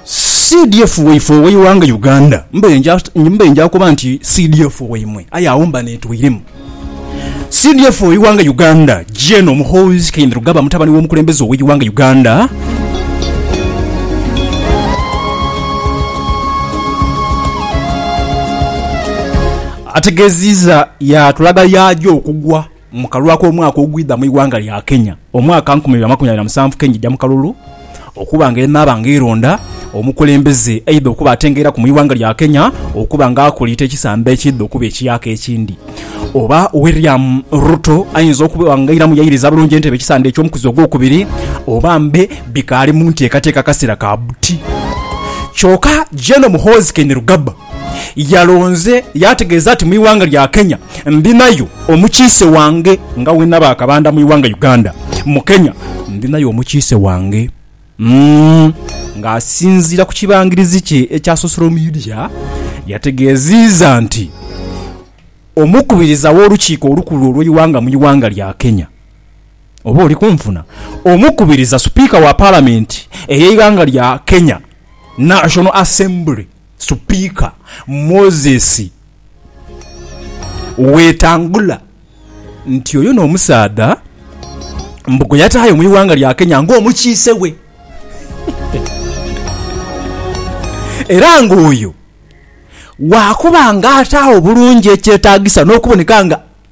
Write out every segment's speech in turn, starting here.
CDF waife oweighanga Uganda mbaire nja mbaire nja kuba nti CDF waimwe aye agho mba netweiremu. CDF oweighanga Uganda Gen Muhoozi Kainerugaba mutabani w'omukulembeze oweighanga Uganda ategeziza yatulaga yaagya okugwa Mu kalulu ak'omwaka ogwidha mu ighanga lya Kenya, omwaka nkumi ibiri amakumi abiri na musanvu Kenya eja mu kalulu okuba nga enaaba nga eronda omukulembeze eidha okuba atengeiraku mu ighanga lya Kenya okuba nga akuliita ekisamba ekiidha okuba ekiyaaka ekindi oba William Ruto aidha okuba nga airamu yairiza bulungi entebe ekisanda eky'omukuzi ogwokubiri oba mbe bikaali mu nteekateeka kasera ka buti. Kyoka Gen Muhoozi Kainerugaba yalonze yaategeeza nti mu ighanga lya Kenya ndhinayo omukiise wange nga bwe naba akabanda mu ighanga Uganda, mu Kenya ndhinayo omukiise wange ng'asinziira ku kibangirizi kye ekya sosolo midia yategeeziiza nti Omukubiriza w'Olukiiko olukulu olw'eighanga mu ighanga lya Kenya oba oli kunfuna? Omukubiriza, Sipiika wa Palamenti ey'eighanga lya Kenya, National Assembly. Sipiika Moses Wetangula nti oyo n'omusaadha mbu gwe yataayo mu ighanga lya Kenya ng'omukiise we era ng'oyo waakuba ng'ataagho bulungi ekyetaagisa n'okuboneka nga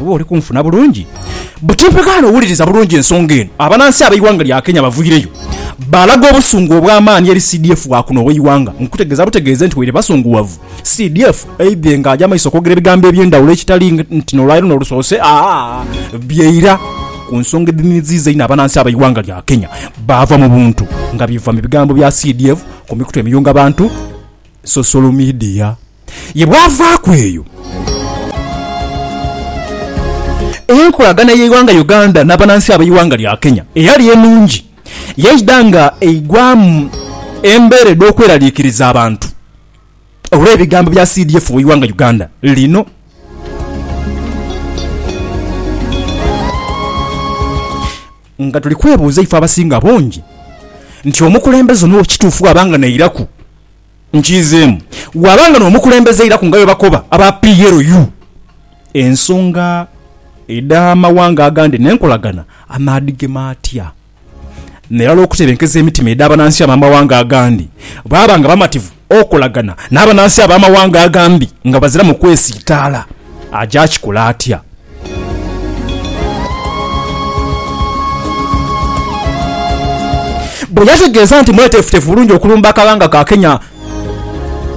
Oba oli kunfuna bulungi? Buti mpegaano wuliriza bulungi ensonga eno. Abanansi abeighanga lya Kenya baviireyo balaga obusungu obwamaani eri CDF wakuno weighanga nkutegeza butegeeze nti waire basunguwavu CDF aidhe nga aja maiso okwogera ebigambo ebyendawulo ekitali nti nolwaleero nolusoose byeira kunsonga edhinhiziiza einho abanansi abeighanga lya Kenya baava mubuntu nga biva mubigambo bya CDF kumikutu emiyunga bantu, social media. Ye bwavaaku eyo, enkolagana y'eighanga Uganda n'abanansi ab'eighanga lya Kenya eyali enungi yaidha nga eigwamu embeera edh'okweraliikiriza abantu olw'ebigambo bya CDF w'eighanga Uganda lino. Nga tuli kwebuuza ife abasinga obungi nti omukulembeze ono kituufu bwaba nga nairaku Nkiizeemu waaba nga n'omukulembeze eiraku nga bwebakoba aba PLU ensonga edh'amawanga agandi n'enkolagana amaadhigema atya n'erala okutebenkeza emitima edh'abanansi ab'amawanga agandi baaba nga bamativu okolagana n'abanansi ab'amawanga agandi nga baziramu kwesiitaala. Aja kikola atya? Bwe yategeeza nti mweteefuteefu bulungi okulumba akabanga ka Kenya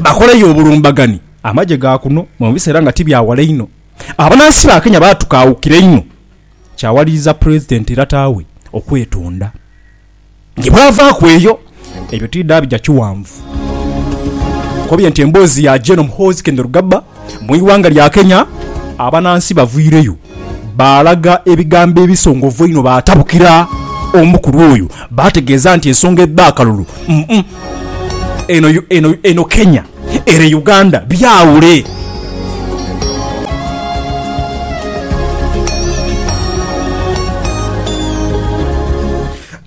bakoleyo obulumbagani, amagye ga kuno mu biseera nga ti bya wala inho abanaansi ba Kenya baatukaawukira inho kyawaliriza Pulezidenti Latawe okwetonda. Ni bwavaaku eyo, ebyo tidhaabija kighanvu, nkobye nti emboozi ya Gen Muhoozi Kainerugaba mu ighanga lya Kenya, abanansi bavwireyo baalaga ebigambo ebisongovu einho baatabukira omukulu oyo baategeeza nti ensonga edh'akalulu, umm, eno Kenya. Ere Uganda byawule.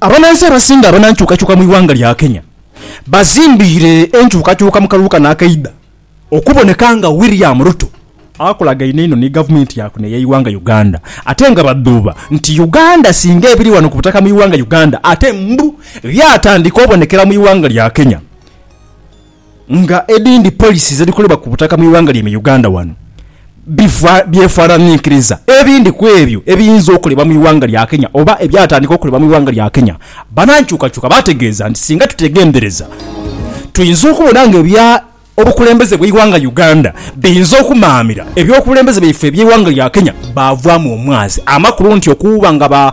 Abanansi abasinga abanankyukakyuka mu ighanga lya Kenya bazimbiire enkyukakyuka mu kalulu kano akaidha okuboneka nga William Ruto akolagaine inho ni gavumenti ya kuno eyeighanga Uganda ate nga badhuuba nti Uganda singa ebiri wano ku butaka mu ighanga Uganda ate mbu byatandika obonekera mu ighanga lya Kenya. nga edindi policy zedhikolebwa ku butaka mu ighanga lyaime Uganda wano byefananinkiriza ebindi kwebyo ebiyinza okolebwa mu ighanga lya Kenya oba ebyatandika okolebwa mu ighanga lya Kenya. Banankyukakyuka bategeeza nti singa tutegendereza tuyinza okubona nga ebya obukulembeze bweighanga Uganda biyinza okumaamira ebyobukulembeze byaife ebyeighanga lya Kenya baavaamu omwazi amakulu nti okuuba nga ba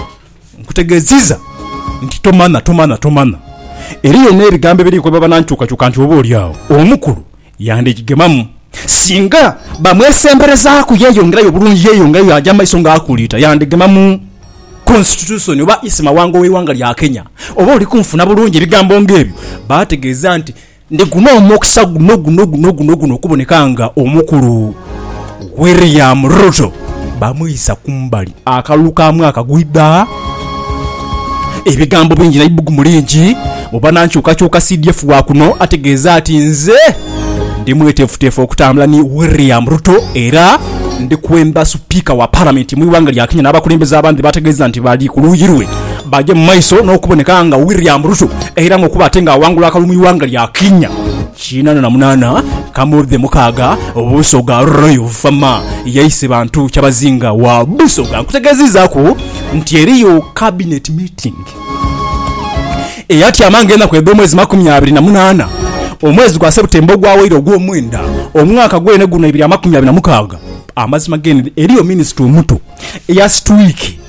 Nkutegeziza nti tomana, tomana, tomana. Era yena ebigambo ebiri kwebaba nankyukakyuka nti oba olyagho omukulu yandhigigemamu. Singa bamwesemberezaku yeyongerayo obulungi, yeyongerayo yaja mumaiso nga akuliita, yandhigemamu Konsititusoni oba Isi Mawanga oweighanga lya Kenya. Oba olikunfuna bulungi ebigambo nga ebyo bategeza nti. Ndiguma omukisa guno guno guno guno guno okuboneka nga omukulu William Ruto bamwisa kumbali akalulu ka mwaka gwidha. Ebigambo bingi na ibugumu lingi mu banankyukakyuka CDF wa kuno ategeeza ati Nze ndi mweteefuteefu okutambula ni William Ruto era ndikwemba Sipiika wa Palamenti mu ighanga lya Kenya n'abakulembeze abandi bategeeza nti bali ku luuyi lwe. Baagya mu maiso n'okuboneka nga William Ruto era ng'okuba ate ng'awangula akalulu mu ighanga lya Kenya. Kinaana na munaana Kamudhe Mukaaga Busoga Royal Fama yaise bantu Kyabazinga wa Busoga. Nkutegeeziizaaku nti eriyo Cabinet meeting eyatyama ng'enaku edh'omwezi makumi abiri na munaana omwezi gwa September ogwawaire ogw'omwenda omwaka gwene guno ebiri amakumi abiri na mukaaga. Amazima gene eriyo Minisita omuto eya situwiiki.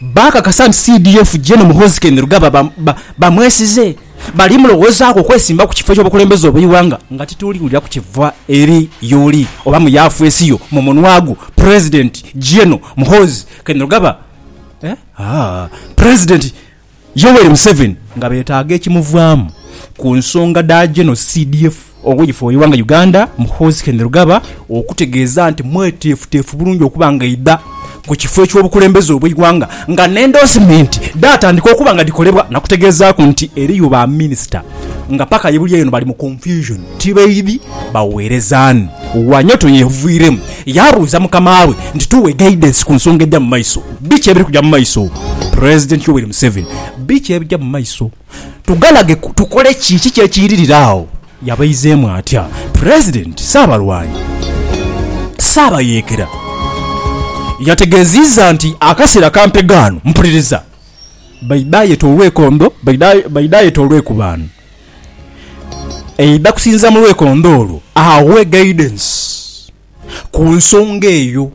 baakakasa nti CDF Gen Muhoozi Kainerugaba bamwesize, bali mulowoozaku okwesimba ku kifo eky'obukulembeze obw'eighanga nga tituli kulya ku kiva eri y'oli oba mu yaafeesi yo mu munwa gwo Pulezidenti Gen Muhoozi Kainerugaba. Yoweri Museveni nga betaaga ekimuvaamu ku nsonga dha Genero CDF oweife oweighanga Uganda Muhoozi Kainerugaba okutegeeza nti mweteefuteefu bulungi okuba nga aidha ku kifo eky'obukulembeze obweighanga nga n'endoosimenti dhaatandika okuba nga dhikolebwa nakutegeezaaku nti eriyo ba minisita nga paka yebuli eno bali mu confusion tibaidhi baweereza ani. Wanyoto yeevuiremu yaabuuza mukamaawe nti tuwe guidance ku nsonga eja mu maiso. Biki ebiri kuja mu maiso? President Yoweri Museveni, Biki ebija mu maiso? Tugalage tukole ki? Kiki ekiiririra agho? Yabaizeemu atya President? Ssaabalwanyi Ssaabayeekera yategeeziiza nti akaseera ka mpegaano, mpuliriza, baidha yeta olwekondo, baidha yeta olwekubaano eidha kusinziira mu lwekondo olwo, aghe guidance. ku nsonga eyo.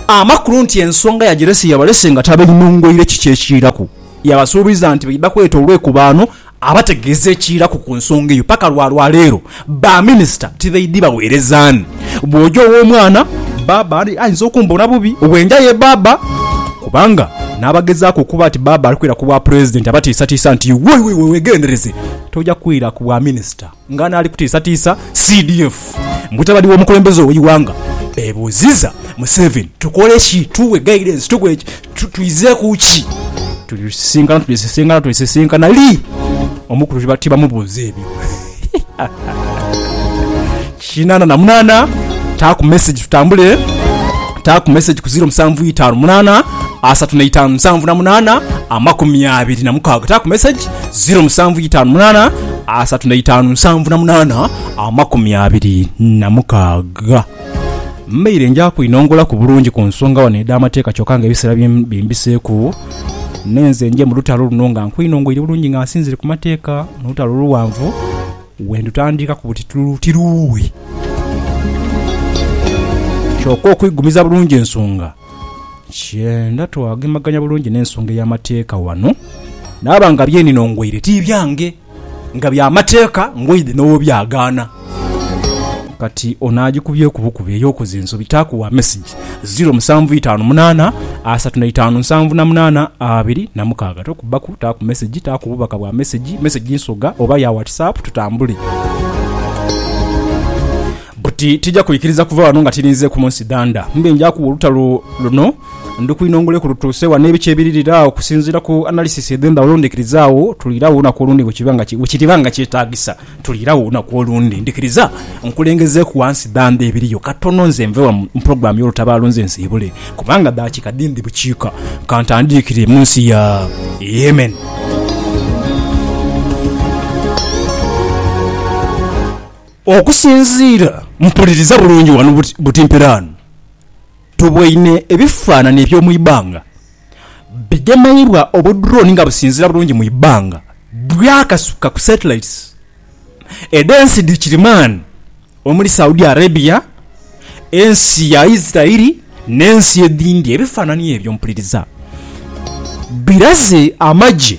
Amakulu nti ensonga yagirese yabalese nga tabainongoire kiki ekiiraku. Yabasuubiza nti baidha kweta olwekubaano abategeeze ekiiraku ku nsonga eyo. Paka lwa lwaleero ba minisita tibaidhi baweerezaani. Bw'oja ow'omwana bbaabba ayinza okumbona bubi bwenja ye bbaabba kubanga n'abagezaaku okuba nti bbaabba ali kwira ku bwapulezidenti abatiisatiisa nti iwe weegendereze toja kwira ku bwaminisita. Nga n'ali kutiisatiisa CDF, mutabani w'omukulembeze ow'eighanga beebuuziza Museveni, Tukole ki? Tughe guidance, tughe ki? Twidhe ku ki? Tulisisinkana, tulisisinkana, tulisisinkana li? Omukulu tibamubuuza ebyo. Kinana na munana taaku message tutambule taaku message ku 0758 asatu na itaanu musanvu na munana amakumi abiri na mukaaga taaku message 0758 asatu na itaanu musanvu na munana amakumi abiri na mukaaga mbaire nja kwinongolaku bulungi ku nsonga wano edh'amateeka kyokka nga ebiseera bim- bimbiseeku nenze nje mu lutalo luno nga nkwinongoire bulungi nga nsinzire ku mateeka mu lutalo luwanvu Bwe ndutandika ku buti tululu tiruughe. Kyoka okwigumiza bulungi ensonga, nkyenda twagemaganya bulungi n'ensonga ey'amateeka wano. Naaba nga bye nino ngwaire ti byange, nga bya mateeka, ngwaidhe n'owobyagaana. Kati ono agikubyeku bukubi ey'okuza ensobi taaku wa mesegi. Trust, ziro musanvu itaanu munaana asatu na itaanu nsanvu na munaana abiri na mukaaga. Tokubbaku, taaku mesegi, taaku bubaka bwa mesegi, mesegi nsoga oba ya Whatsapp tutambule. Buti tija kwikiriza kuva wano nga tirinze ku munsi danda. Mbe nja kuwa olutalo luno ndukwinongole ku lutuuse wa n'ebiki ebiririra okusinziira ku analysis edh'endhawulo ndhikirizaawo tuliireagho olunaku olundi bwe kiriba nga kyetaagisa. Tuliira wo olunaku olundi. Ndikiriza nkulengezeeku wansi dhandha ebiriyo katono nze nve wano mu pulogulaamu y'olutabaalo nze nsiibule, kubanga daakika dhi ndhi bukiika ka ntandiikire mu nsi ya Yemen. Okusinziira, mpuliriza bulungi wano buti mperaano. Tuboine ebifaanani eby'omu ibanga bigemeibwa obudrooni nga businziira bulungi mu ibanga bwakasuka ku satellites edh'ensi dhi kirimaani omuli Saudi Arabia, ensi ya Israeli n'ensi edhindi. Ebifaanani ebyo mpuliriza biraze amagye.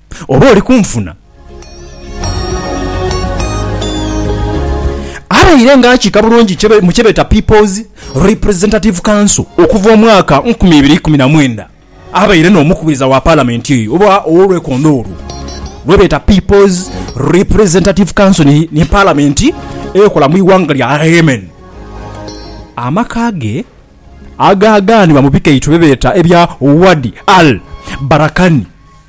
Oba oli kunfuna? Abaire nga akiika bulungi mu kyebeeta People's Representative Council okuva omwaka nkumi ibiri ikumi na mwenda, abaire n'omukubiriza wa Palamenti eyo oba ow'olwekondo olwo lwebeeta People's Representative Council ni Palamenti ekola mu ighanga lya Yemen. Amaka ge agaagaanibwa mu bikaito byebeeta ebya Wadi Al Barakani.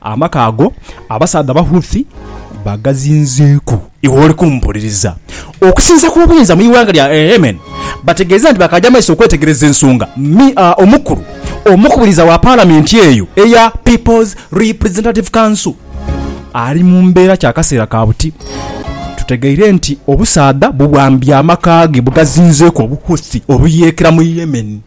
Amaka ago abasaadha Abahouthi bagazinzeeku. Iwe oli kumpuliriza? Okusinza kw'obuyinza mu ighanga lya Yemen bategeeza nti bakaaja maiso okwetegereza ensonga mi a omukulu omukubiriza wa Palamenti eyo eya People's Representative Council ali mu mbeera kya kaseera ka buti. Tutegeire nti obusaadha buwambye amaka ge bwegazinzeeku Obuhouthi obuyeekera mu Yemen.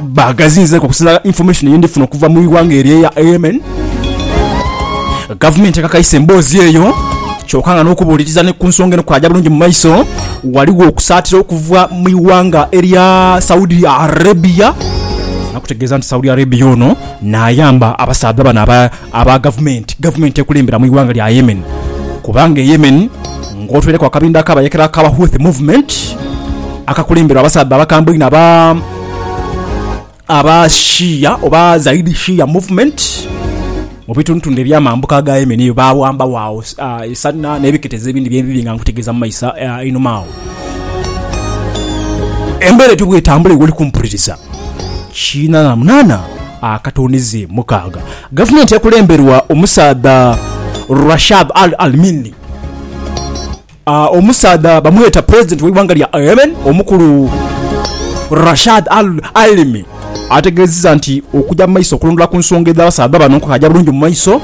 Baagazinzeeku okusinzira information ye ndifuna okuva mu ighanga eryo eya Yemen. Gavumenti ekakaisa emboozi eyo kyoka nga n'okubuuliriza ni ku nsonga eno kwaaja bulungi mu maiso, ghaligho okusaatira okuva mu ighanga erya Saudi Arabia, nakutegeeza nti Saudi Arabia ono naayamba abasaadha bano aba aba gavumenti gavumenti ekulembera mu ighanga lya Yemen kubanga e Yemen ng'otweireku akabindho ak'abayekera aka Houthi Movement akakulemberwa abasaadha abakambwe einho aba aba Shia oba Zaidi Shia Movement mu bitundutundu eby'amambuka aga Yemen eyo baawambawo agho e Sanaa n'ebiketezo ebindi bye ndidhi nga nkutegeeza mu maiso einhuma agho. Embeera etyo bw'etambula iwe oli kumpuliriza, kiina na munaana. akatunizi mukaaga. Gavumenti ekulemberwa omusaadha Rashad Al Almini, omusaadha bamweta pulezidenti w'eighanga lya Yemen omukulu Rashad Al Alimi ategeezezza nti okugya mu maiso okulondoola ku nsonga edh'abasaadha bano kukagya bulungi mu maiso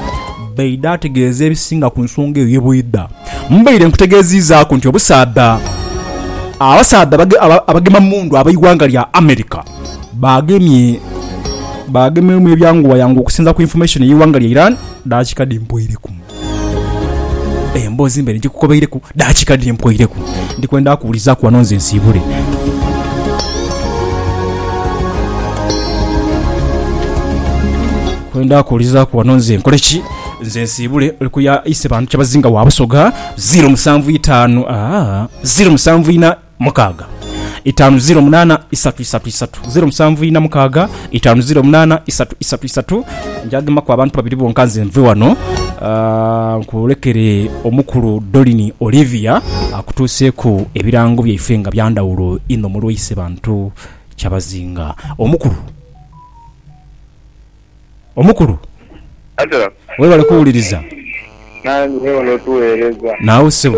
Baida ategeeza ebisinga ku nsonga eyo ye bwidha Mbaire nkutegeeziizaaku nti obusaadha abasaadha abagema mundu ab'eighanga lya America baagemyemu ebyanguwayanguwa okusinza ku infomation ey'eighanga lya Iran daakika dhi mpwoireku. Emboozi mbaire nkikukobeireku daakika dhiri mpwoireku. Ndi kwenda kuwulizaaku wano nze nsiibule. Kwenda kuwulizaaku wano nze nkole ki? Nze nsiibule. Oli ku ya Isebantu Kyabazinga wa Busoga, zeero musanvu itaanu, aa, zeero musanvu ina. mukaaga itaanu ziro munaana isatu isatu isatu ziro musanvu ina mukaaga itaanu ziro munaana isatu isatu isatu njagemaku abantu babiri bonka nze nve wano Ah, nkwolekere omukulu dolini olivia akutuuseeku ebirango byaife nga byandawulo inho mulwaise bantu kyabazinga omukulu omukulu Angela, webale kuwuliriza nange webale otuweereza. naawe ssebo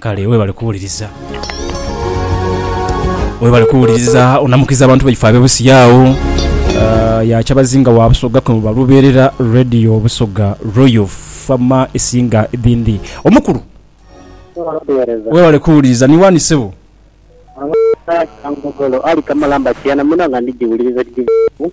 Kale webale kuwuliriza. Webale kuwuliriza. Onamukiza abantu baife abe Busia agho. Ya Kyabazinga wa Busoga kwe muba lubeerera. Radio Busoga Royal Fama esinga edhindi. Omukulu webale kuwuliriza. Ni wani sebo? Abaana Kyangogolo, Ali Kamalamba Kiana, mwena nga ndigiwuliriza tigivaaku.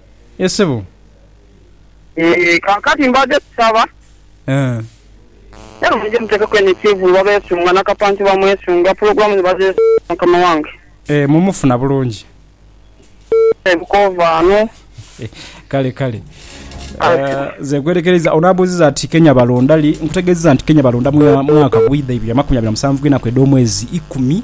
Ye sebo. Eeh kakati mbade kusaba. Eeh. Era muje mutekeku eno ekivulu babesunga na kapanti bamwesunga pulogulamu ni bazesunga mukama wange. Eeh mumufuna bulungi. Eeh bukova ano. Kale kale nze gwerekereiza ono abuziza ati kenya balonda li nkutegezeza nti kenya balonda mwaka gwa idha ibiri amakumi abiri na musanvu gwenaku edhomwezi ikumi